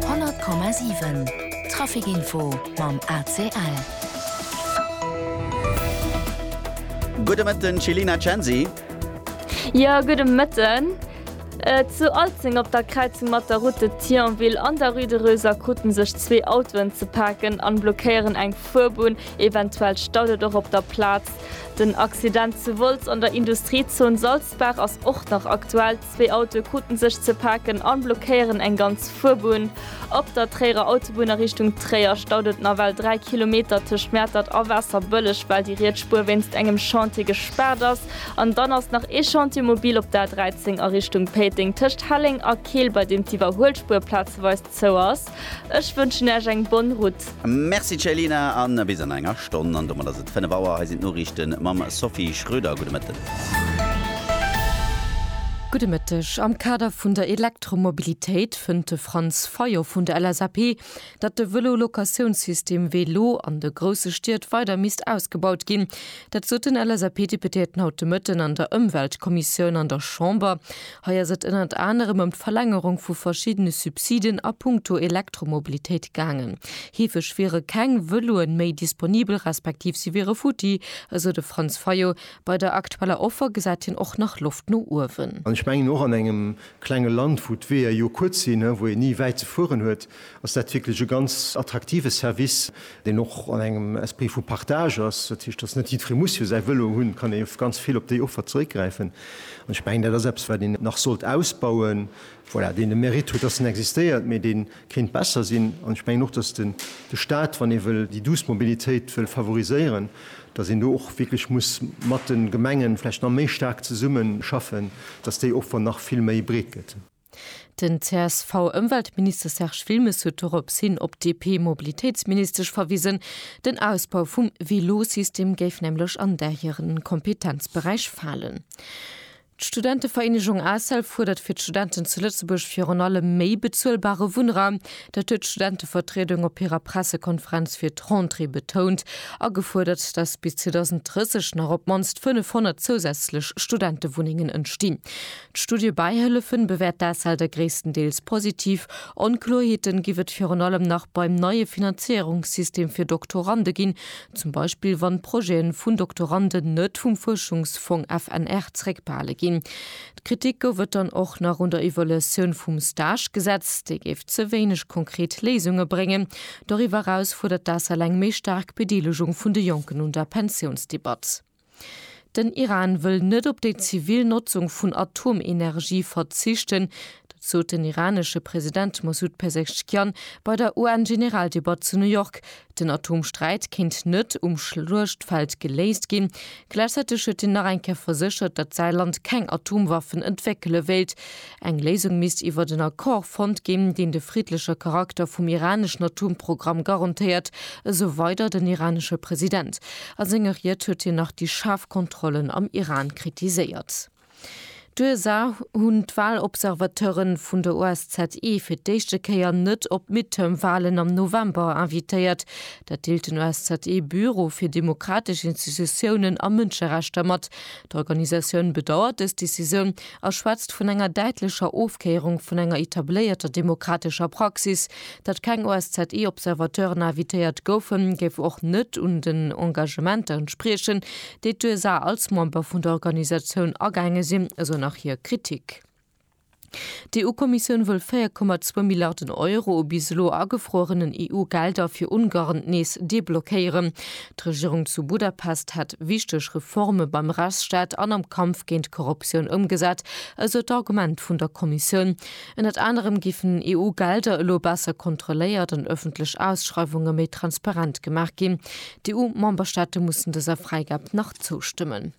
100,7 Trafic Info mam ACL. Gudde Mëtten Celina Censi. Jo gudde Mëtten. Zu Alzeng op der Kräizung mat der Route de Thionville an der Rue de Reuser kruten sech zwee Autoen ze paken an blockéieren eng Fuerbunn. Eventuell staut et och op der Plaz. Den Accident zu Wolz an der Industriezon Salzburg. D'Baach ass och nach aktuell. Zwee Autoe krute sech ze paken a blockéieren eng ganz Fuerbunn. Op der Tréierer Autobunn a Richtung Tréier staut et nawell 3 Kilometer tëscht Mäertert a Waasserbëlleg, well déi riets Spuer wéinst engem Chantier gespaart ass. An dann ass nach ee Chantier mobil op der A 13 a Richtung Péiteng tëscht Helleng a Keel, bei deem d'Iwwerhuelspuer plazeweis Sou ass. Ech wënschen Äech eng bonne route. Merci Céline an bis an enger Stonn. An domat ass et 5 Auer. Hei sinn d'Noriichten mam Sophie Schröder. Gudde Mëtten. Gudde Mëtteg. Am Kader vun der Elektromobilitéit fënnt de Franz Fayot vun der LSAP, datt de Vëlo-Locatiounssystem Velo an de grousse Stied weider misst ausgebaut ginn. Dat sot den LSAP-Deputéierten haut de Mëtten an der Ëmweltkommissioun an der Chamber. Hei ass et ënnert anerem ëm d'Verlängerung vu verschiddene Subsiden a puncto Elektromobilitéit gaangen. Heefeg wiere keng Vëloen méi disponibel respektiv si wiere futti, esou de Franz Fayot. Bei der aktueller Offer gesäit hien och nach Loft no uewen. An ech mengen, och an engem klenge Land, wou d'Weeër jo kuerz sinn, wou een ni wäit ze fueren huet, ass dat wierklech e ganz attraktive Service, deen och an engem Esprit vu Partage ass. Dat heescht, datt net jiddweree muss jo säi Vëlo hunn, et kann ee ganz vill op déi Offer zeréckgräifen. An ech mengen, dat ass eppes, wat een nach sollt ausbauen, voilà, deen de Mérite huet, datt en existéiert, mee dee kéint besser sinn. An ech mengen och, datt den de Stat, wann ee wëll déi douce Mobilitéit wëll favoriséieren, datt een do och wierklech muss mat de Gemengen vläicht nach méi staark zesummeschaffen, datt déi Offer nach vill méi breet gëtt. Den CSV-Ëmweltminister Serge Wilmes huet dorops hin op d'DP-Mobilitéitsministesch verwisen. Den Ausbau vum Vélosystem géif nämlech an där hire Kompetenzberäich falen. D'Studentevereenegung ACEL fuerdert fir d'Studenten zu Lëtzebuerg virun allem méi bezuelbare Wunnraum. Dat huet d'Studentevertriedung op hirer Pressekonferenz fir d'Rentrée betount a gefuerdert, datt bis 2030 nach op d'mannst 500 zousätzlech Studentewunnengen entstinn. D'Studie Bäihëllefen bewäert d'ACELDe gréisstendeels positiv. Onkloerheeten giff et virun allem nach beim neie Finanzéierungssystem fir Doktorande ginn, zum Beispill wann d'Projeten vun Doktoranden net vum Fuerschungsfong FNR zeréckbehale ginn. D'Kritik gouf et dann och nach un der Evaluatioun vum Stagegesetz, déi géif ze wéineg konkret Léisunge bréngen. Doriwwer eraus fuerdert d'ACEL eng méi staark Bedeelegung vun de Jonken un der Pensiounsdebatt. Den Iran wëll net op déi zivil Notzung vun Atomenergie verzichten, dat sot den iranesche President Mosoud Pezeshkian bei der UN-Generaldebatt zu New York. Den Atomsträit kéint net um Schluechtfeld geléist ginn. Gläichzäiteg huet hien nach eng Kéier verséchert, datt säi Land keng Atomwaffen entwéckele wéilt. Eng Léisung misst iwwert en Accord fonnt ginn, deen de friddleche Charakter vum iraneschen Atomprogramm garantéiert, esou weider den iranesche President. A senger Ried huet hien nach déi schaarf Kontrollen am Iran kritiséiert. D'USA hunn d'Walobservateuren vun der OSZE fir d'éischte Kéier net op d'Midterm-Walen am November invitéiert. Dat deelt den OSZE-Büro fir demokratesch Institutiounen a Mënscherechter mat. D'Organisatioun bedauert dës Decisioun, a schwätzt vun enger däitlecher Ofkéierung vun enger etabléierter demokratescher Praxis. Datt keng OSZE-Observateuren invitéiert goufen, géif och net un den Engagementer entspriechen, déi d'USA als Member vun der Organisatioun agaange sinn, esou nach hir Kritik. D'EU-Kommissioun wëll 4,2 Milliarden Euro u bis elo agefruerenen EU-Gelder fir Ungarn nees deblockéieren. D'Regierung zu Budapest hätt wichteg Reforme beim Rechtsstaat an am Kampf géint d'Korruptioun ëmgesat, esou d'Argument vun der Kommissioun. Ënnert anerem géifen EU-Gelder elo besser kontrolléiert an ëffentlech Ausschreiwunge méi transparent gemaach ginn. D'EU-Memberstaate mussen dëser Fräigab nach zoustëmmen.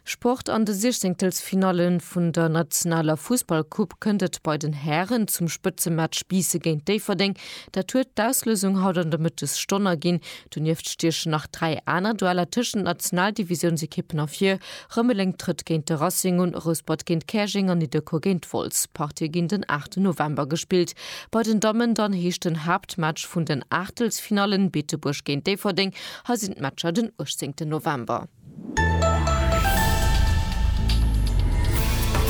Sport, An de Siechzéngtelsfinalle vun der nationaler Fussballcoupe kënnt et bei den Hären zum Spëtzematch Biisse géint Déifferdeng. Dat huet d'Auslousung haut an de Mëttesstonn erginn. Donieft stiechen nach dräi aner Dueller tëschent Nationaldivisiounsekippen ervir, Rëmeleng trëtt géint de Racing un, Rouspert géint Käerjeng an Nidderkuer géint Wolz. D'Partie ginn den 8 November gespillt. Bei den Dammen dann heescht den Haaptmatch vun den Aachtelsfinallen Beetebuerg géint Déifferdeng. Hei sinn d'Matcher den 18 November.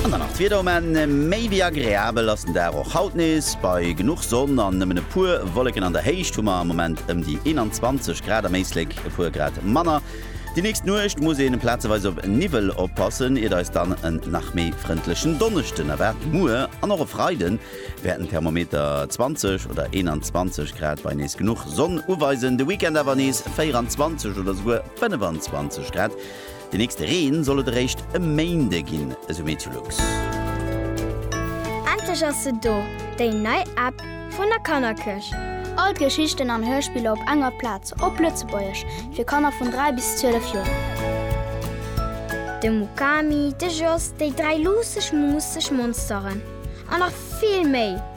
An dann nach d'Wieder um Enn, méi wéi agreabel ass den Dag och haut nees, bei genuch Sonn an nëmmen e puer Wolleken. An der Héicht hu mer am Moment ëm déi 21 Grad, am Éislek e puer Grad manner. Déi nächst Nuecht muss een plazeweis op Niwwel oppassen, iert eis dann en nach méi frëndlechen Donneschden erwaart. Muer an och e Freide wäerten d'Thermometer 20 oder 21 Grad bei nees genuch Sonn uweisen, de Weekend awer nees 24 oder souguer. 25 Grad. De nächste Reen soll et eréischt e Méinde ginn, esou Meteolux. Endlech ass se do, déi nei App vun der Kannerkëch! All d'Geschichten an Hörspiller op enger Plaz, op Lëtzebuergesch, fir Kanner vun 3 bis 12 Joer. De Mukami, de Jos, déi dräi luusseg, muusseg Monsteren an nach vill méi!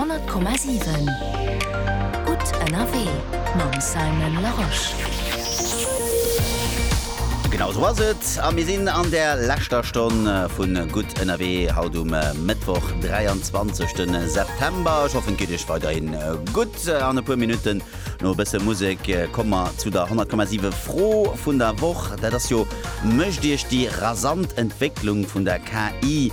100,7 Gutt ënnerwee mam Simon Larosche. Genau esou ass et a mir sinn an der leschter Stonn vu Gutt ënnerwee haut um Mëttwoch, 23 de September. Ech hoffen et geet iech weiderhin gutt. An e puer Minutten, no e bësse Musek, komme mer zu der 100,7 Fro vun der Woch. Dat ass jo, Mécht iech déi rasant Entwécklung vun der KI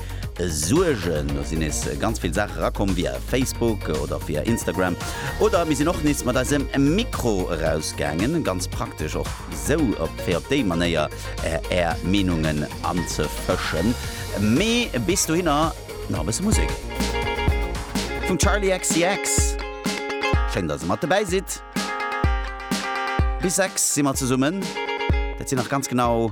Suergen. Do sinn nees ganz vill Saache rakomm via Facebook oder via Instagram. Oder mir sinn och nees mat eisem Mikro erausgaangen. Ganz praktesch och esou, op fir op déi Manéier är Meenungen anzefëschen. Mee bis dohinner nach e bësse Musek vum Charli XCX. Schéin, dass der mat dobäi sidd. Bis 6 si mer zesummen. Dat sinn nach ganz genau.